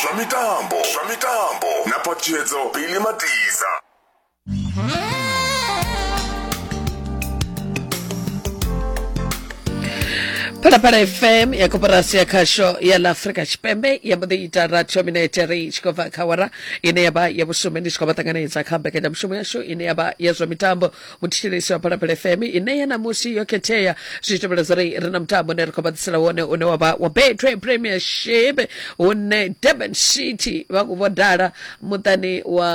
zwa mitambo zwa mitambo na phaṱhutshedzo bili matiza phalaphala fm ya koporasi ya khasho ya la afrika tshipembe ya mbo ḓi ita ratio mineteri i tshi khou bva kha wara ine ya vha ya vhusumi ndi tshi khou vha ṱanganedza kha mbekanyamushumo yashu ine ya vha ya zwa mitambo muthetshelesi wa phalaphala fm ine ya namusi yo khethea zwi tevhela zwa ri ri na mutambo une ri khou vhaḓisela wone une wa vha wa betway premiership hune durban city vha khou vhodala muṱani wa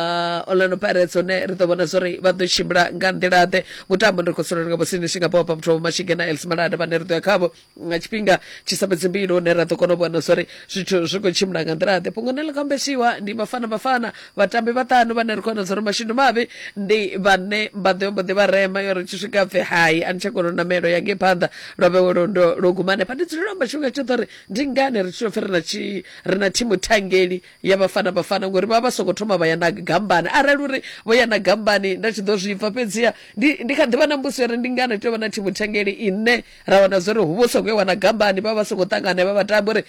orlando pirates hune ri ḓo vhona zwa uri vha ḓo tshimbila nga nḓila-ḓe mutambo ndi ri khou sulela nga vhosini singapore pa muthu wa vhomashige na els malada vhane ri ḓo ya khavho nga tshifhinga tshi sa fhedzi mbili hune ra ḓo kona u vhona zwori zwithu zwi khou tshimbila nga nḓila ḓe fhungo ne ḽi khou ambeshiwa ndi vhafana vhafana vhatambi vhaṱanu vhane ri khou vhona zwori mashindu mavhi ndi vhane vha ḓo mbo ḓi vha rema yo ri tshi swika pfe hai a ni tsha kona u namelo ya ngei phanḓa lwa vhewe lwendo lwo guma hanefha ndi dzulela amba tshifhinga tshoṱhe uri ndi ngani ri tshitopfe ri na tshi ri na thimu thangeli ya vhafana vhafana ngori vha vha songo thoma vha ya na gambani arali uri vho ya na gambani nda tshi ḓo zwi pfa fhedziha ndi ndi kha ḓivha na mbusi uri ndi ngani tea vha na thimu thangeli ine ra wana zwori hu vho songo wana gambani vha vha songo ṱangana vha vhatambi uri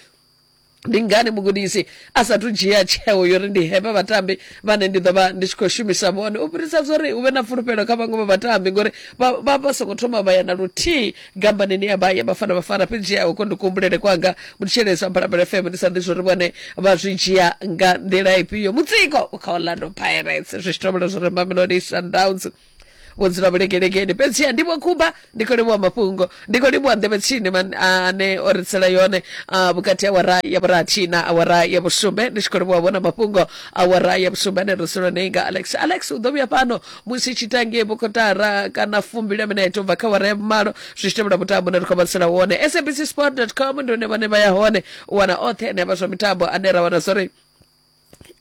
ndi ngani mugudisi a sathu dzhia tsheo yo ri ndi hevha vhatambi vhane ndi ḓo vha ndi tshi khou shumisa vhone u fhirisa zwa uri hu vhe na fulufhelo kha vhaṅwe vha vhatambi ngori vha vha songo thoma vha ya na luthihi gambanini ya vha ya vhafana vhafana fhedzi ya uko ndi kuhumbulele kwanga mutshelezi wa mbalabela fm ndi sa ḓi zwa uri vhone vha zwi dzhia nga nḓila ifhio mutsiko u kha orlando pirates zwi tshi tovhela zwa uri mamelodi sundowns vhudzula vhulekelegeni fhedziha ndivho khumba ndi khou livhuwa mafhungo ndi khou livhuwa nḓevhe tsini man- a- ane o ri tsela yone a, vhukati ha awara ya vhurathi na awara ya vhusumbe ndi tshi khou livhuwa vhona mafhungo awara ya vhusumbe ane ri solo nei nga alex alex u ḓo vhuya fhano musi tshitange vhukotara kana fumbili ya minete u bva kha awara ya vhumalo zwi tshi tevhela mutambo une ri khou vhatsela wone sabc sport com ndi hone vhane vha ya hone u wana oṱhe ane a vha zwa mitambo ane ra wana zwo ri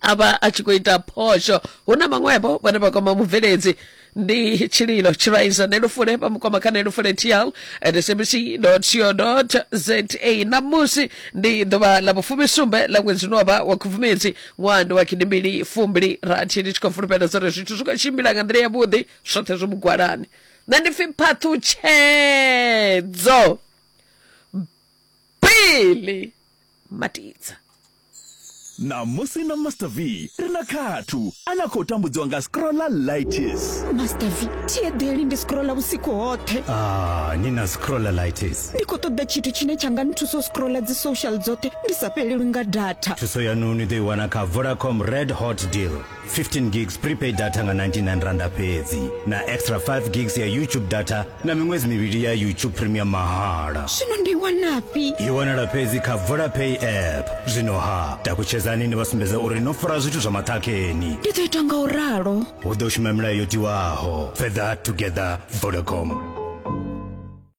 a vha a tshi khou ita phosho hu na maṅwevho vhane vha kwama mubveledzi ndi tshililo tshiraiza nelufule vha mu kwama kha nelufule tl at sabc co za ṋamusi ndi ḓuvha ḽa vhufumisumbe ḽa ṅwedzi une wavha wa khubvumedzi ṅwaha ndi wa gidimbili fumbili rathi ndi tshi khou fulufhela dza uri zwithu zwi khou tshimbila nga nḓila yavhuḓi zwoṱhe zwo mugwalani nṋe ndi pfi phaṱhutshedzo bili matidza Ṋamusi na Master V ri na Khathu ane a khou tambudziwa nga scrollalitis. Master V, thi eḓeli ndi scrolla vhusiku hoṱhe. Ah, ni na scrollalitis. Ndi khou ṱoḓa tshithu tshine tsha nga nthusa u scrolla dzi social dzoṱhe ndi sa fhelelwi nga data. Thuso yaṋu ni ḓo i wana kha Vodacom Red Hot Deal. 15 gigs prepaid data nga 99 randa fhedzi na extra 5 gigs ya youtube data na miṅwedzi mivhili ya youtube premium mahala zwino ndi wanafhi i wanala fhedzi kha vodapay app zwino ha takutshedzani ni vha sumbedza uri no fara zwithu zwa maṱhakheni ndi ḓo ita nga u ralo hu ḓo shuma milayo yo tiwaho fether together vodacom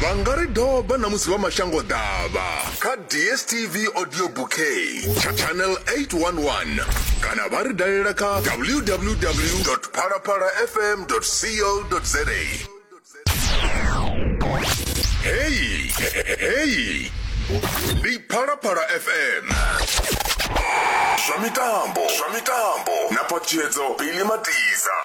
vha nga ri doba na musi vha mashango ḓavha kha dstv audio bouquet tsha channel 811 kana vha ri dalela kha www phalaphala fm co za heyi heyi ndi phalaphala fm zwa mitambo zwa mitambo na phatshedzo bili matiza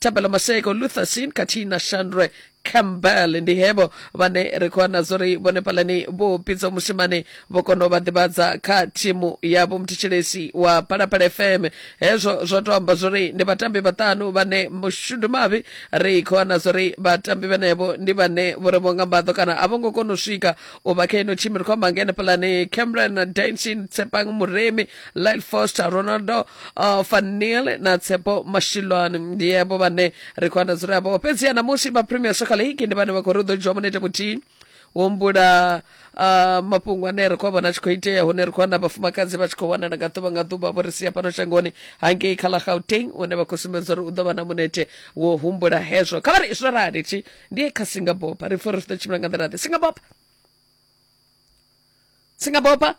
thabelo maseko lutherson khathihi na shandre campbell ndi hevho vhane ri khou wana zwo ri vhone phalani vho pidza mushimane vho kona u vha ḓivhadza kha thimu ya vhomuthetsheleshi wa phalaphala fm hezwo zwo to amba zwo ri ndi vhatambi vhaṱanu vhane mushudu mavhi ri khou wana zwo ri vhatambi vhenevho ndi vhane vho ri vho nga mbaḓo kana a vho ngo kona u swika u vha kha ino thimu ri khou amba ngene phalani cameron dansin tshepang muremi lyle foster ronaldo uh, fanil na tsepo mashilwani ndiyebo vane ri khou anḓadzula yavho fhedziha namusi vha premier soccer league ndi vhane vha khou ri u ḓo dzhiwa munete muthihi humbula uh, mafhungo ane ri khou a vhona a tshi khou itea hune ri khou wana vhafumakadzi vha tshi khou wanala nga ḓuvha nga ḓuvha vho ri sia fhano shangoni hangei kha ḽa gauteng une vha khou sumbedza uri u ḓo vha na munete wo humbula hezwo kha vha ri zwo rali thi ndiye kha singabopa ri pfa uri ri ḓo tshimbila nga nḓila ḓe singabopa singabopa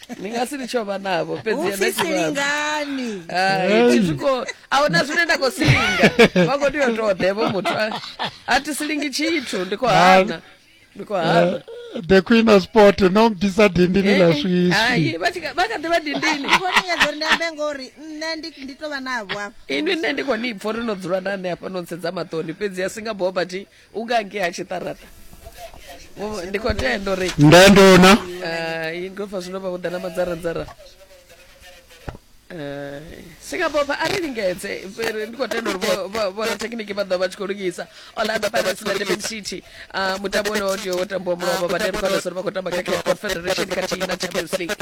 ndi nga si litsho vha navho fhedzi ene upfi tshivhalo. silingani Hai, thi zwi khou- a huna zwine nda khou silinga vha khou tea u tou ḓevho muthu a- a thi silingi tshithu ndi khou hana ndi khou hana Eh, the queen of sport no bvisa dindini ḽa swiswi Hai, vha tshi kha- vha kha ḓi vha dindini ndi khou lingedza uri ndi ambe ngori nṋe ndi ndi tou vha navho afha inwi nṋe ndi khou ni pfa uri no dzula na ane hafha no ntsedza maṱoni fhedzi a singa boba thi u gage ha tshiṱaraṱa ndi khou tenda uri ndandona eh, ngofa zwino vha vhuḓa na madzaradzara eh, singapore a ri lingedze ndi khou tenda uri vhorathekhiniki vha ḓo vha tshi khou lugisa orlando pirates na durban city eh, mutambo une wo tea wo tambiwa mulovha vha tea ri khou tamba kha cape confederation khathihi na champions league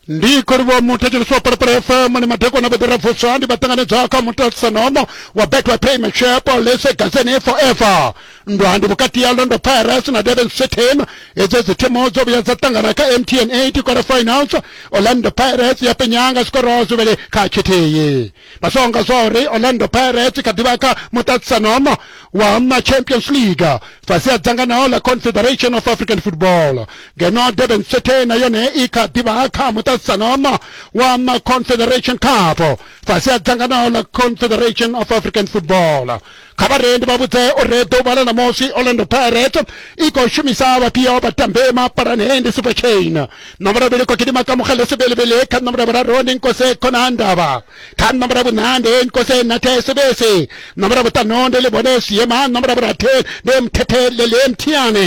ndi kholivo muthetsheleswa phalaphala fm ni madekwana vho ḓira vuswa ndi vha ṱanganedzwa kha mutasanomo wa betway payment shop lese gazeni forever ndwa ndi vhukati ya londo pirates na durban cityn hedzi dzi thimu dzo vhuya dza ṱangana kha mtn 8 quarter finals orlando pirates ya penyanga zwikorwa zwivhili kha tshithihi masonga zwauri orlando pirates i kha ḓivha kha muṱaṱisanono wa machampions league fhasi ha dzanganao ḽa confederation of african football ngeno durban city na yone i kha ḓivha kha muṱaṱisanono wa maconfederation cup fhasi ha dzanganao ḽa confederation of african football kha vharendi vha vhudze uri ḓuvha ḽa ṋamusi orlando pirates i khou shumisa vhafhio vhatambi mapalani hei ndi super chain ṋomboro vhili khou gidima ka mugele sebelebele kha ṋomboro vhuraru ndi nkose khona ndavha kha ṋomboro vhuṋa ndi nkose nathe sebese ṋomboro vhuṱanu ndi livhone siema ṋomboro vhurathi ndi mthethe lele mthiane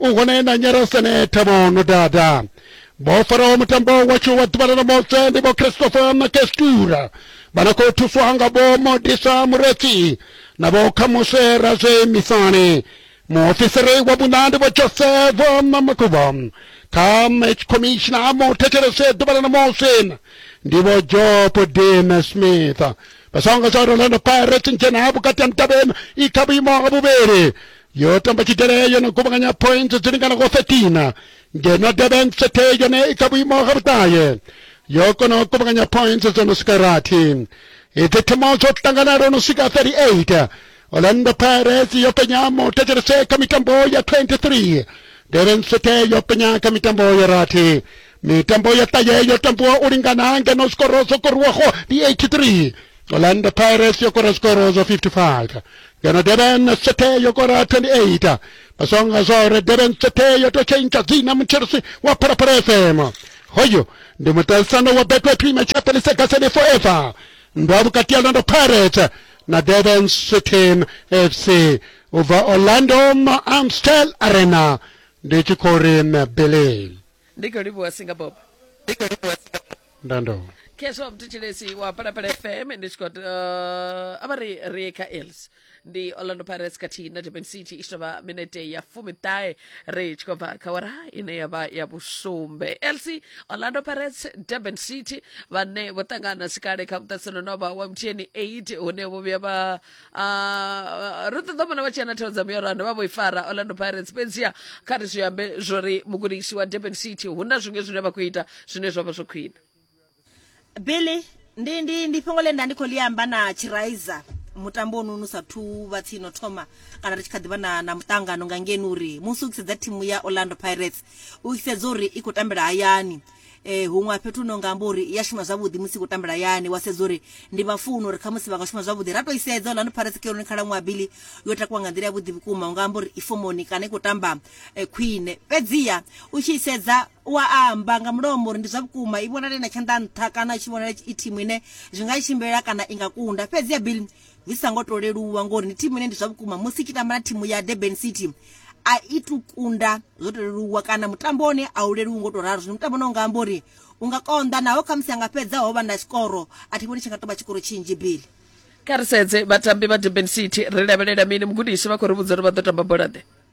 u hone na nyara senetha vho no dada vho faraho mutambo watsho wa ḓuvha ḽa ṋamutshe ndi vho christopher na kestura vha na khou thuswa nga vho modisa muretsi na vho khamuswe razwe misani muofisiri wa vhuṋa ndi vho joseph na makuva kha match commissioner muthetshelese ḓuvha ḽa ṋamusi ndi vho job dame smith vhasonga zwa orlando pirates ndzhena vhukati ha mudavheni i kha vhuimo ha vhuvhili yo tamba tshidele yo no kuvhanganya point dzi linganaho 13 ngeno durban city yone i kha vhuimo ha vhuṱahe yo kona u kuvhanganya point dzo no swika rathi idzi thimu dzo ṱangana lwo no swika 38 orlando pirates yo penya muthetshelese kha mitambo ya 23 durban city yo penya kha mitambo ya rathi mitambo ya ṱahe yo tambiwa u lingana ngeno zwikororo zwo koriwaho ndi 83 Orlando Pirates yo kora skoro zo 55 ngeno Durban City yo kora 28 basonga zore Durban City yo to change dzina muchirisi wa Phalaphala FM hoyo ndi muṱaṱisano wa Betway Premier Chapelisa Gaseni Forever ndo vhukati ha Orlando Pirates na Durban City FC ubva Orlando Amstel Arena ndi tshi khou ri Billy ndi khou livhuwa Singapore ndando khezwo mthitshilesi wa palapala fm ndi tshi khou uh, ava ri ri kha els ndi orlando pirates khathihi na durban city i tshi tovha minete ya fumiṱahe ri tshi khou bva kha wara ine ya vha ya vhusumbe els orlando pirates durban city vhane vho ṱangana sikale kha muṱatsano no vha wa mthiyeni 8 hune vho vhuya vha Ah, ro ṱoḓa vhona vha tshi ana thero dza miyoro a dovha vho i fara orlando pirates fhedziha kha ri zwi ambe zwo ri mugudisi wa durban city hu na zwiṅwe zwine vha khou ita zwine zwa vha zwo khwine billy ndi, ndi, ndi fhungo ḽe nda ndi khou ḽi amba na chiraiza mutambo ono nu sa thu vha tsini o thoma kana ri tshi kha ḓi vha na, na muṱangano nga ngeni uri musi u tshi sedza thimu ya orlando pirates u tshi sedza uri i khou tambela hayani eh, huṅwe a fhethu no nga amba uri ya shuma zwavhuḓi musi khou tambela yani wa sedza uri ndi vhafuno uri khamusi vha nga shuma zwavhuḓi ra to i sedza orlando pirates khaironi khalaṅwaha bili yo takuwa nga nḓila ya vhuḓi vhukuma u nga amba uri i fomoni kana i khou tamba eh, khwine fhedziha u tshi i sedza wa amba nga mulomo uri ndi zwa vhukuma i vhonale na tshanḓa nṱha kana i tshi vhonala i thimu ine zwi nga i tshimbila kana i nga kunda fhedziha bili Zwi sa ngo tou leluwa ngori ndi thimu ine ndi zwa vhukuma musi tshi tamba na thimu ya Durban City a i tu kunda zwo tou leluwa kana mutambo wone a u leluwi ngo tou ralo zwino mutambo no nga amba uri u nga konḓa naho khamusi a nga fhedza ho vha na tshikoro a thi vhoni tshi nga tou vha tshikoro tshinzhi bili Kha ri sedze vhatambi vha Durban City, ri lavhelela mini? Mugudisi vha khou ri vhudza uri vha ḓo tamba bola-ḓe.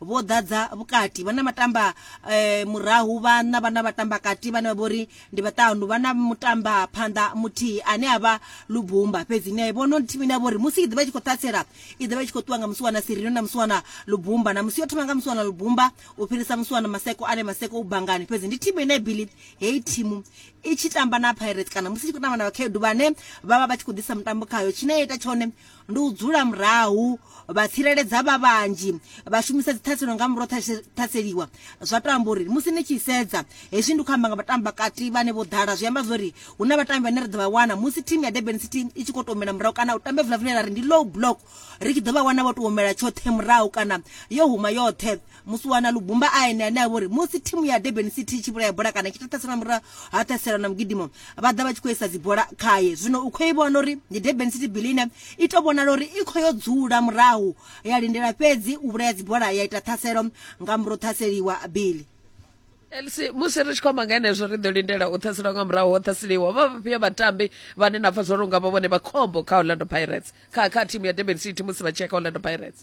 vho ḓadza vhukati vha na matamba eh, murahu vha na vha na vhatamba kati vhane vha vhori ndi vhaṱanu vha na mutamba phanḓa muthihi ane a vha lubumba fhedzi ni a i vhona uri thimu ine ya vhori musi i ḓivha i tshi khou ṱhatsela i ḓivha i tshi khou ṱuwa nga musiwana sirino na musiwana lubumba na musi yo thoma nga musiwana lubumba u fhirisa musiwana maseko ane maseko u bangani fhedzi ndi thimu ine bili heyi thimu i tshi tamba na pirate kana musi i tshi khou tamba na vhakhaedu vhane vha vha vha tshi khou ḓisa mutambo khayo tshine ya ita tshone ndi u dzula murahu vha tsireledza vha vhanzhi vha shumisa dziṱhaselo nga muro ṱhaseliwa zwa to amba uri musi ni tshi sedza hezwi ndi khou amba nga vhatambi vhakati vhane vho ḓala zwi amba zwori hu na vhatambi vhane ri ḓo vha wana musi thimu ya durban city i tshi khou tomela murahu kana u tamba evula vhune ra ri ndi low block ri tshi ḓo vha wana vho to omela tshoṱhe murahu kana yo huma yoṱhe musi wana lubumba a ene ane a vhori musi thimu ya durban city i tshi vhulaya bola kana i tshi ṱhaṱhasela murahu ha ṱhasela na mugidimo vha ḓa vha tshi khou isa dzibola khaye zwino u khou i vhona uri ndi durban city bilina i tou vhonala uri i khou yo dzula murahu ya lindela fhedzi u vhulaya dzibola ya ita ṱhaselo nga murahu ṱhaseliwa bili elsi musi ri tshi khou amba nga henezwo ri ḓo lindela u ṱhaselwa nga murahu ho ṱhaseliwa vha vhafhio vhatambi vhane na pfa zwo runga vha vhone vha khombo kha orlando pirates kha kha thimu ya durban city musi vha tshia kha orlando pirates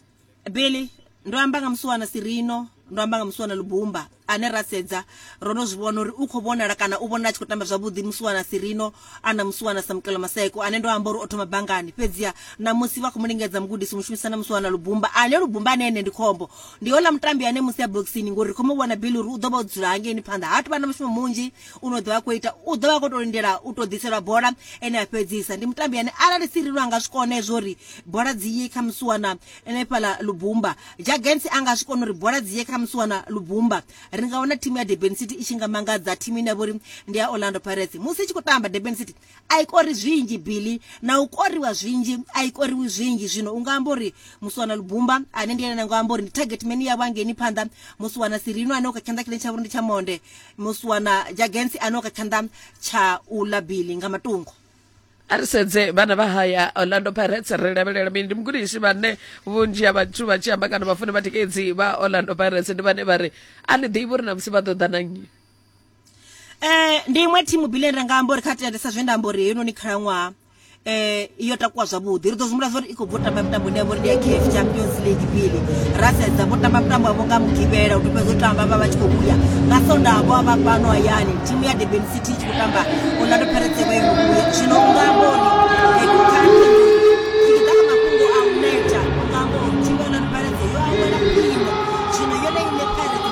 billy ndo amba nga musi wana sirino ndo amba nga musi wana lubumba ane ra sedza ro no zwi vhona uri u khou vhonala kana u vhonala a tshi khou tamba zwavhuḓi musi wana sirino a na musi wana samukelo maseko ane ndo amba uri o thoma bangani fhedziha na musi vha khou mu lingedza mugudisi mushumisa na musi wana lubumba ane lubumba ane ene ndi khombo ndi hola mutambi ane musi ya boxini ngori ri khou mu vhona bili uri u ḓo vha o dzula hangeini phanḓa ha tuvha na mushumo munzhi u no ḓovha khou ita u ḓovha a khou tou lindela u tou ḓiselwa bola ene a fhedzisa ndi mutambi ane arali sirilo anga zwi kone zwo ri bola dzi ye kha musi wana ene fhala lubumba jagens anga zwi kone uri bola dzi ye kha musi wana lubumba ri nga wana thimu ya durban city i tshi nga mangadza thimu ine ya vha uri ndi ya orlando pirates musi i tshi khou tamba durban city a i kori zwinzhi billy na u koriwa zwinzhi a i koriwi zwinzhi zwino u nga amba uri musiwana lubumba ane ndi ene na nga amba uri ndi target meni yavho angeni phanḓa musiwana sirino ane o kha tshanḓa tshine tsha vhori ndi tsha monde musiwana jagensi ane o kha tshanḓa tsha u ḽa billy nga matungo a ri sedze vhana vha haya orlando pirates ri lavhelela mini ndi mugudisi vhane vhunzhi ha vhathu vha tshi amba kana vhafuni vhatikedzi vha orlando pirates ndi vhane vha ri a ni ḓivhi uri na musi vha ḓo ḓa na nnyi eh ndi iṅwe thimu bile ri nga amba uri kha tendesa zwe nda amba uri heinoni khalaṅwaha eh iyo takuwa zwavhuḓi ri ḓo zwi mulafha uri i khou bvo tamba mitambo ine ya vhori ndi ya caf champions league bile ra sedza vho tamba mitambo yavho nga mugivhela u to fhedza u tamba vha vha tshi khou vhuya nga sondaha vho vha fhano hayani thimu ya durban city i tshi khou tamba orlando pirates vha ingo vhuya zwino u nga amba uri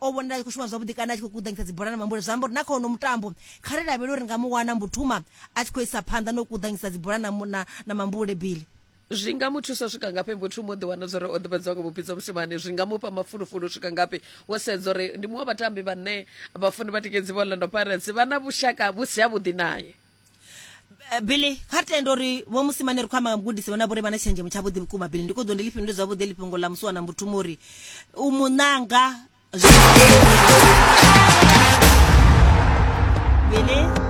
o vhonala a tshi khou shuma zwavhuḓi kana a tshi khou kuḓanyisa dzibola na mambule zwi amba uri na kha ono mutambo kha ri lavhele uri nga mu wana mbutuma a tshi khou isa phanḓa no kuḓanyisa dzibola na, mu- na, na mambule bili zwi nga mu thusa u swika ngafhi mbuthumo ḓi wana zwori o ḓivhadziwa nga vhuphidzo mushumani zwi nga mufha mafulufulu u swika ngafhi wo sedza uri ndi muṅwe wa vhatambi vhane vhafuni vha tikedzi vha orlando pirates vha na vhushaka vhu si havhuḓi naye Eh, billy kha tenda uri vho musimane ri khou amba nga mugudisi vhona vhori vha na tshenzhemo tshavhuḓi vhukuma billy ndi khou ḓo ndi lifhindule zwavhuḓi lifhungo ḽa musiwana mbuthumo uri u mu ṋanga billy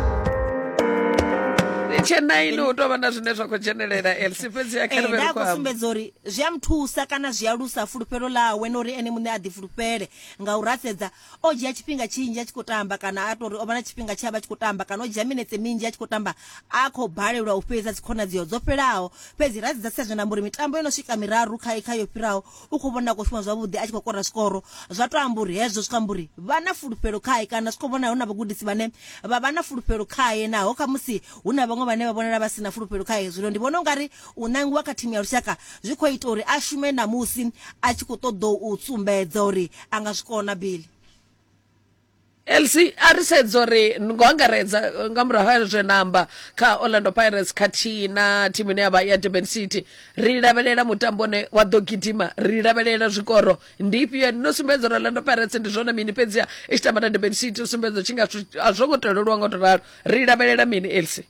tshena ini u tovha na zwine zwa khou dzhenelela elsi fhedzi ya kharivhe ri khou amba sumbedza uri zwi a muthusa kana zwi a lusa fulufhelo ḽawe na uri ene muṋe a ḓi fulufhele nga u rasedza o dzhia tshifhinga tshinzhi a tshi khou tamba kana a tori o vha na tshifhinga tshe a vha tshi khou tamba kana o dzhia minetse minzhi a tshi khou tamba a khou balelwa u fhedza dzikhonadzeo dzo fhelaho fhedzi ra dzidza sedza na mburi mitambo yo no swika miraru kha kha yo fhiraho u khou vhona a khou shuma zwavhuḓi a tshi khou kora zwikoro zwa to amba uri hezwo zwi khou amba uri vha na fulufhelo khae kana zwi khou vhona hu na vhagudisi vhane vha vha na fulufhelo khae naho kha musi hu na vhaṅwe vhane vha vhonala vha si na fulufhelo khae zwino ndi vhona ungari U nangiwa kha thimu ya lushaka zwi khou ita uri a shume na musi a tshi khou ṱoḓa u sumbedza uri a nga zwi kona Billy. Elsie a ri sedza uri ngo angaredza eh, nga murahu ha zwe na amba kha Orlando Pirates khathihi na thimu ine yavha ya Durban City ri lavhelela mutambo une wa ḓo gidima ri lavhelela zwikoro ndi ifhio no sumbedza uri Orlando Pirates ndi zwone mini fhedziha i tshi tamba na Durban City u sumbedza tshi nga a zwo ngo to leluwa ngo to ralo ri lavhelela mini Elsie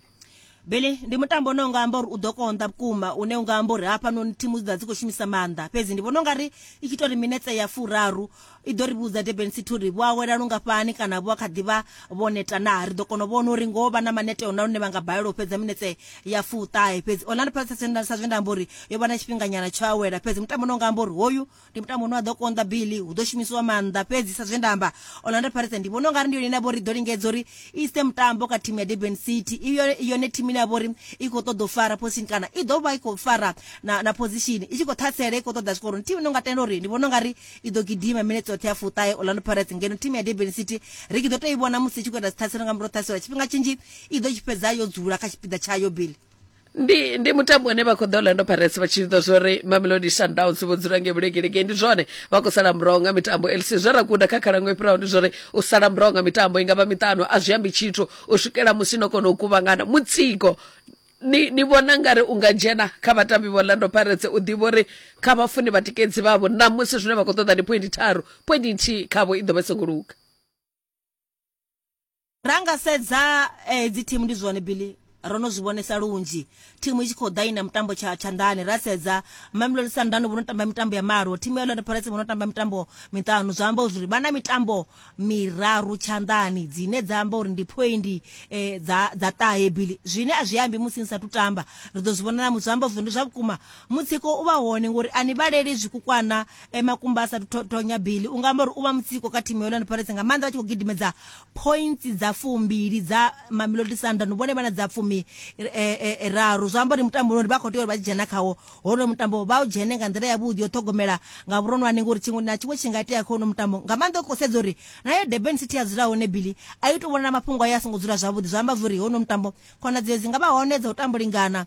bele ndi mutambo une unga amba uri u ḓo konḓa vhukuma une unga amba uri hafhanoni thimu dzi ḓa dzi khou shumisa maanḓa fhedzi ndi vhona unga ri i tshi to ri minetse ya furaru i ḓo ri vhudza durban city uri vho awela lungafhani kana vho a kha ḓi vha vho neta naa ri ḓo kona u vhona uri ngoho vha na manete ona lune vha nga balelwa u fhedza minetse ya fuṱahe fhedzi orlando pirates sa zwe nda amba uri yo vha na tshifhinganyana tsho awela fhedzi mutambo une unga amba uri hoyu ndi mutambo une wa ḓo konḓa billy hu ḓo shumisiwa maanḓa fhedzi sa zwe nda amba orlando pirates ndi vhona u nga ri ndi yone ine ya vha uri ḓo lingedza uri i ise mutambo kha thimu ya durban city i yone thimu ine ya vha uri i khou ṱoḓa u fara position kana i ḓo vha i khou fara na, na position i tshi khou ṱhasela i khou ṱoḓa zwikoroni thimu ine nga tenda uri ndi vhona u nga ri i ḓo gidima minetse yoṱhe ya fuṱahe orlando pirates ngeno thimu ya durban city ri ki ḓo tou i vhona musi i tshi khou ita dziṱhaselo nga murahu ṱhaselo tshifhinga tshinzhi i ḓo tshi fhedza yo dzula kha tshipiḓa tshayo billy ndi ndi mutambo une vha khou ḓa orlando pirates vha tshi ḓo zwo ri mamelodi sundowns vho dzula nge vhulegelege ndi zwone vha khou sala muraho nga mitambo lc zwe ra guda kha khalango i fhiraho ndi zwori u sala muraho nga mitambo i nga vha miṱanu a zwi ambi tshithu u swikela musi no kona u kuvhangana mutsiko ni ni vhona ngari u nga dzhena kha vhatambi vha orlando pirates u ḓivha uri kha vhafuni vhatikedzi vhavho ṋamusi zwine vha khou ṱoḓa ndi pointi tharu pointi nthihi khavho i ḓo vha i songo luga Ra nga sedza eh, hedzi thimu ndi zwone Billy ro no zwi vhonesa lunzhi thimu i tshi khou ḓa i na mutambo tsha tshanḓani ra sedza mamelodi sundowns vho no tamba mitambo ya malo thimu ya orlando pirates vho no tamba mitambo miṱanu zwa amba uri vha na mitambo miraru tshanḓani dzine dza amba uri ndi phoindi eh, dza dza ṱahe bili zwine a zwi ambi musi ni sathu tamba ri ḓo zwi vhona namu zwi amba uri ndi zwa vhukuma mutsiko u vha hone ngori a ni vhaleli zwikukwana eh, makumba a sa thonya bili u nga amba uri u vha mutsiko kha thimu ya orlando pirates nga maanḓa vha tshi khou gidimedza points dza fumbili dza mamelodi sundon vhone vha na dza fumi eh, eh, raru zwa amba uri mutambo uri vha khou tea uri vha tshi dzhena khawo honoyo mutambo vha u dzhene nga nḓila yavhuḓi yo ṱhogomela nga vhuronwane ngori tshiṅwe na tshiṅwe tshi nga itea kha honoyo mutambo nga maanḓa u khou sedza uri nayo durban city ya dzula hone bili a i tou vhona na mafhungo ayo a songo dzula zwavhuḓi zwa amba zwa uri honoyo mutambo khonadzeo dzi nga vha hone dza u tambo lingana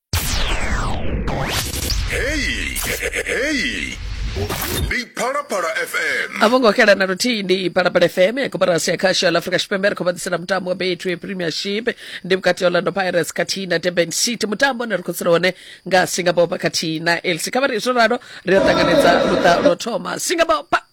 heyi heyi ndi phalaphala fm a vho ngo xela na luthihi ndi phalaphala fm ya koporasi ya khasho ya la afrika tshipembe ri khou vha ḓisela mutambo wa betway premiership ndi vhukati ha orlando pirates khathihi na durban city mutambo une ri khou tsela hone nga singapore pa khathihi na elsi kha vha ri zwo ralo ri a ṱanganedza luṱa lwo thoma singapore pa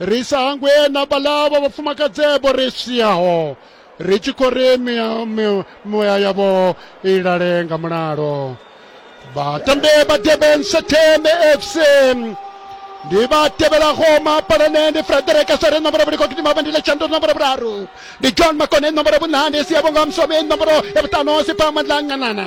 ri sa hangwe na vhala vha vhafumakadzevho ri siaho ri tshi khou ri muya yavho i lale nga mulalo batambi ba durban satem fc ndi ba tevhelaho mapalane ndi frederick sere nomboro vhuli kokiti mavendile tshandu nomboro vhuraru ndi john makone nomboro vhunani siavho nga musome nomboro ya vhutano siphamandlanganana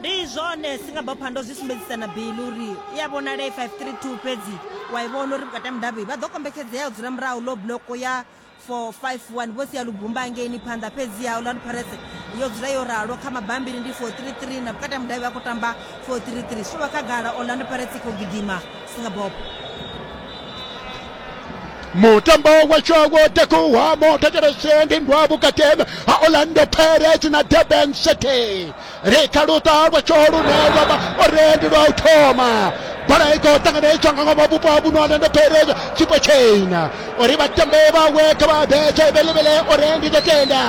ndi zwone singabho phando zwi sumbedzisa na bili uri i a vhonala i 532 fhedzi wa i vhona uri vhukati ha mudavhi vha ḓo kombetshedzea u dzula murahu low block ya 451 vho sia lubumba angeini phanḓa fhedzi ya orlando pirates yo dzula yo ralo kha mabambiri ndi 433 na vhukati ha mudavhi vha khou tamba 433 zwi tshi vha khagala orlando pirates i khou gidima Singapore. mutambo wa tshogo takuwa motakereshendi ndwa vukateme ha orlando pirates na durban city ri kha luṱa lwa tshoho lune lwa vha orendi lwa u thoma bola i khou ṱanganedzwa nga ngomu vhupo ha vhuno orlando pirates tshipo tshina uri vhatambe vhawe kha vha betshe velevele orendi ḓo tenda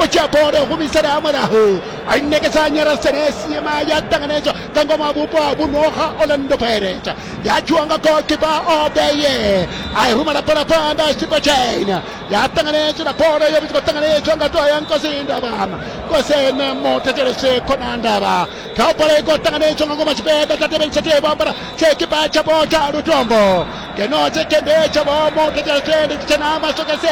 u dzhia bola humisela ha murahu a i nekedza nyarasenesi yema ya ṱanganedzwa ka ngoma vhupo ha vhuno ha orlando pirate ya dzhiwa nga golkipa obeye a i rumela bola phanḓa a xipa china ya ṱanganetshela bola yo vha tshi khou ṱanganetshwa nga ṱuwa ya nkosi ndaba kosene mutetelese khona ndaba kha bola i khou ṱanganetshwa nga ngoma tshipeḓa tsha tevheli tsha tevha bola tshekipa tshapo tsha lutombo ngeno tshekende tshavho mutetelese ndi tshitshena masokese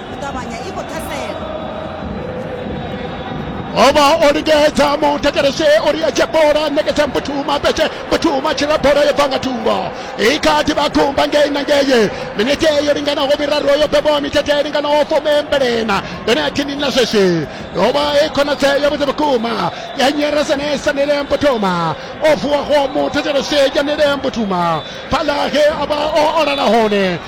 u ṱavhanya i khou ṱhasela ovha o lingedza mutekereshe uri a dzhia bola ṋekedza mputuma petshe mputuma tshila bola yo bva nga thungo i kha ḓi vha kumba ngei na ngei minete yo linganaho miraru yo bebwa mithethe i linganaho fumembelena yone athini na zwezwi yo vha i khonadzeo ya vhuḓi vhukuma ya nyeresanesa nile mputuma o vuwaho mutekereshe ya nile mputuma fhaḽa he a vha o olala hone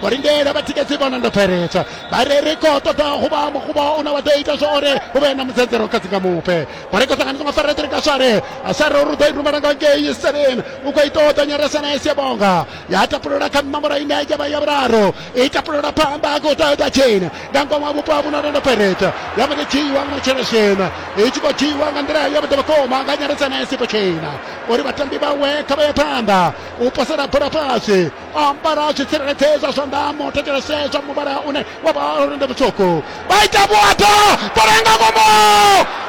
vho lindela vhatikedzi vhona ndo bveledza vha ri ri khou ṱoḓa huvha mukuba une wa ḓo ita zwa uri hu vhe na mudzedzero kha dzinga mupe vho ri khou ṱanganisa nga faredri ka swale asare uri u ḓo i rumela nga ngei seven u khou ita u ṱonyeresa na esi ya bonga ya tapulula kha nomboro ine ya vha ya vhuraru i tapulula phanḓa a khou ṱoḓa tsheni nga ngomu ha vhupo ha vhuno ndo bveledza ya vha ndi dzhiiwa nga matshelo shena i tshi khou dzhiiwa nga nḓila ya vhuḓo vhukuma nga nyaresa na esi potshena uri vhatambi vhawe kha vha ye phanḓa u posela bola fhasi o ambara a tshi tsireledzeza zwanḓa a mo thetshelese zwa muvhala une wa vha uri ndi mutswuku vha ita vhuaḓa bola nga ngomo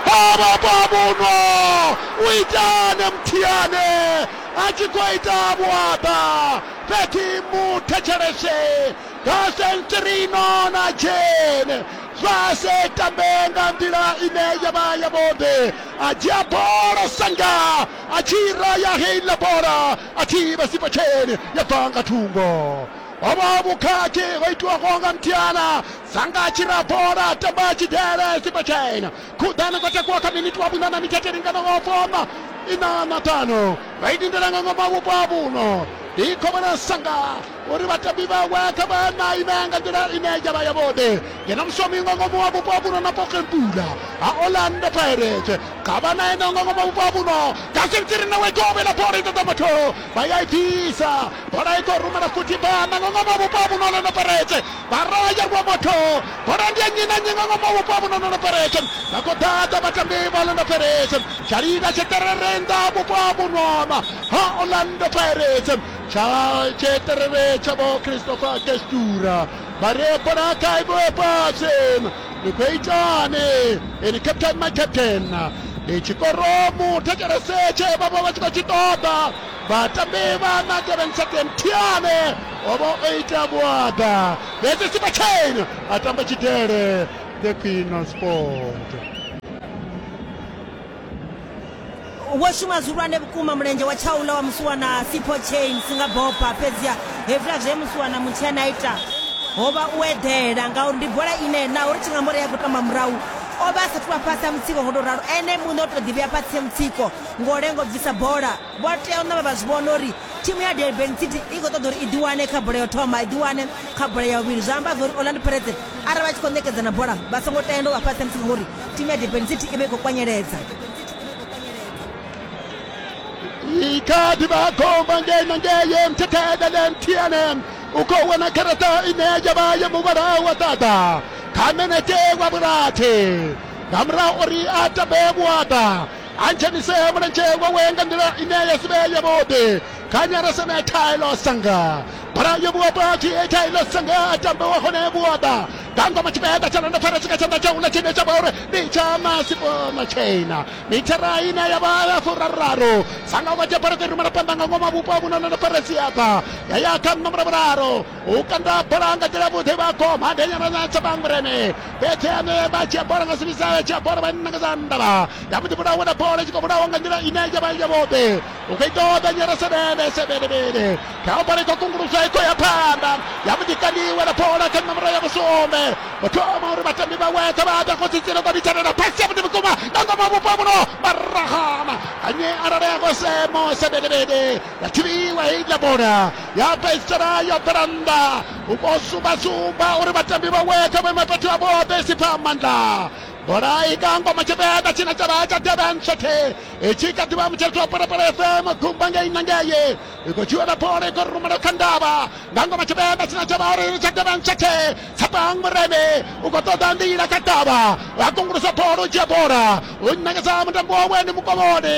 havha vhavhuno u itane muthiane a tshi khou ita vhuaḓa fhedzi mu thetshelese nga sentrino na jene zwa se tambe nga nḓila ine ya vha yavhuḓi a dzhia bola sanga a tshi ra ya heila bola a thivha sipotsheni ya bva nga thungo hovho vhukhakhi ho itiwaho nga mthiana sanga tshirabola tamba tshidele sipotsheni khuḓani kho takuwa kha miniti wa vhuṋa na mithethe linganaho foma ina na ṱanu vha idindela nga ngoma vhupo ha vhuno ndi khovhela sanga uri vhatambi vhawe kha vha na ime nga nḓila ine ya vha yavhuḓi ngeno mushomi nga ngomu wa vhupo vhuno na pokempula ha orlando pirates kha vha na ene nga ngomu wa vhupo vhuno dasintiri nawe govhe la bola i ṱoḓa muthu vha ya i bvisa bola i khou rumela futhi bana nga ngomu wa vhupo vhuno orlando pirates vha raya rwa muthu bola ndi ya nnyi na nnyi nga ngomu wa vhupo vhuno orlando pirates vha khou ḓadza vhatambi vha orlando pirates tshalila tsheṱerere nnḓa vhupo vhunona ha orlando pirates Tsha tsheṱereve tsha vho Christopher Kestura vha re bola kha ivo fhasi ni khou itani ini captain my captain ndi tshikoro muthetshelese tshe vha vha vha tshi khou tshi ṱoḓa vhatambi vha na Durban City Mthiane o vha o ita vhuaḓa fhedzi Simba Chain a tamba tshidele the queen of sport wo shuma zwihulwane vhukuma mulenzhe wa tshaula wa musiwana sipho chain singa bopa fhedziha hezwiḽa zwe musiwana mutshena a ita ho vha u eḓela ngauri ndi bola ine naho ri tshi nga mbori ya khou tamba murahu o vha a sathu vha fhasi ha mutsiko ngo tou ralo ene muṋe o tou ḓivhea fhasi ha mutsiko ngo lengo bvisa bola Vho tea u ṋamba vha zwi vhona uri thimu ya Durban City i khou ṱoḓa uri i ḓiwane kha bola ya u thoma, i ḓiwane kha bola ya vhuvhili. Zwa amba zwa uri Orlando Pirates arali vha tshi khou ṋekedzana bola vha songo tenda u vha fhasi ha musi ngauri thimu ya Durban City i vha i khou kwanyeledza. Ikhadi vha khomba ngei na ngei mthethele le mthiane u khou wana garaṱa ine ya vha ya muvhala wa ṱaḓa kha menete wa vhurathi nga murahu uri a tambe vhuaḓa a dzhenise mulenzhe wawe nga nḓila ine ya si vhe yavhuḓi kha nyarasa na thaelo sanga bola yo vhuwa pati thaelo sanga a tamba wa hone vhuoḓa nga ngoma tshipiḓa tsha londofara tshika tshanḓa tsha hula tshine tsha vha uri ndi tsha masipo matshaina mithara ine ya vha ya furaruraru sanga wa dzhia bola kha rumela phanḓa nga ngoma vhupo ha vhuno londofara siaḓa ya ya kha nṋa mulavhuraru u kanda bola nga nḓila vhuḓi vha goma ndi nyamana tsa bangureme fhedzi ane vha dzhia bola nga sivisa ya dzhia bola vha nna nga zandavha ya vhuḓi vhulawa na bola tshi khou vhulawa nga nḓila ine ya vha ya vhoṱhe u khou ita oda nyara sebele sebelebele kha bola ikho kungulusa ikho ya phanḓa ya vhuḓi kandiwa na bola kha nomoro ya vhusumbe muthoma uri vhatambi vha wetha vha ḓa khotsi tsino vha vhithanela pasi ya vhuḓi vhukuma nga ngoma vhupo vhuno marahama anye arali a khou semo sebelebele ya thivhiwa heiḽa bola ya fhedzisela yo bvela nnḓa u khou sumbasumba uri vhatambi vhawe kha vhuime fhethu ha vhoṱhe i si pfa maanḓa bola i nga ngoma tshivenḓa tshine tsha vha tsha devhen sothe i tshi kha ḓivha mutsheleti wa phalaphala fm gumba ngei na ngei i khou dzhiwela bola i khou rumela kha ndavha nga ngoma tshivenḓa tshine tsha vha uri tsha devhen sothe tsapang mureme u khou ṱoḓa nḓila kha ndavha a kungulusa bola u dzhia bola u ṋekeza mutambo wawe ndi mukovhoni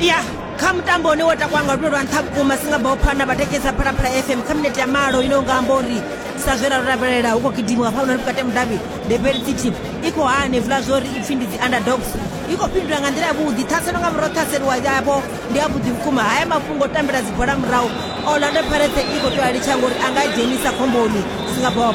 ya kha mutambo une wa takwa nga lwendo lwa nṱha vhukuma singabao phana vhatekesa phalaphala fm kha minete ya malo ine unga amba uri sa zwe ra ro lavhelela hu khou gidimiwa pha unani vhukati ha mudavhi debel city i khou hanevula zwa uri ipfhi ndi dzi underdogs i khou fhindula nga nḓila yavhuḓi ṱhaselo nga murahu ṱhaselo wa yavho ndi yavhuḓi vhukuma haya mafhungo o tambela dzibola murahu orlando parete i khou tea litsha ngori a nga dzhenisa khomboni singabao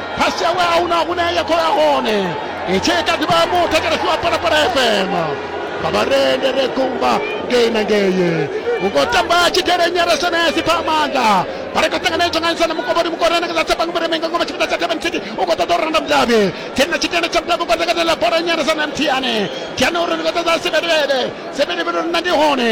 phasi yawe a huna hune ya khou ya hone i tshi ita ḓivha ya muthu thetshelesiwa phalaphala fm nga vharende re kumba ngei na ngei u khou tamba tshidele nyarasenesi pha amanda vha ri khou ṱanganedzwa nga nsana mukovhoni mukorana nga dza banga mureme nga ngoma tshifhinga tsha thebe nthithi u khou ṱoḓa u randa mudavhi tsini na tshidele tsha mudavhi kwa ḓakatela bola nyarasana mthiane thiane uri ndi khou ṱoḓa sebelebele sebelebele uri nna ndi hone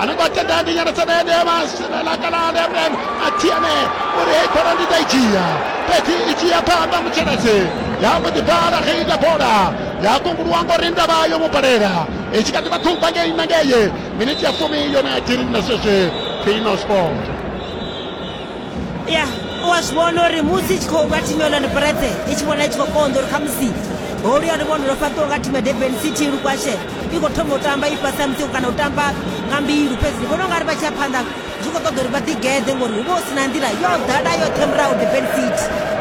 anagwatte dande nyana tsanende masilalakalande mrem atiane uri hei bola ndi ḓa i dzhia fhedzi i tshi ya phanḓa mutsheledzi ya mbo ḓi bala ge ita bola ya kunguluwa ngori ndavha yo mu balela i tshi kha ḓi vha ṱhumba ngei na ngeye miniti ya fumi yone ya tiri na sweswi phino sport ya u a zwi vhona uri musi i tshi khou nga thimu ya orlando pirates i tshi vhona i tshi khou konḓa uri khamusi holu ya luvhondo lwo fhaṱiwa nga thimu ya durban city lukwashe i khou thoma u tamba i fhasi ha mutsiko kana u tamba nga mbilu fhedzi ndi vhona u nga ri vha tshi ya phanḓa zwi khou ṱoḓa uri vha ḓigeḓe ngori hu vha hu si na nḓila yo ḓala yoṱhe murahu durban city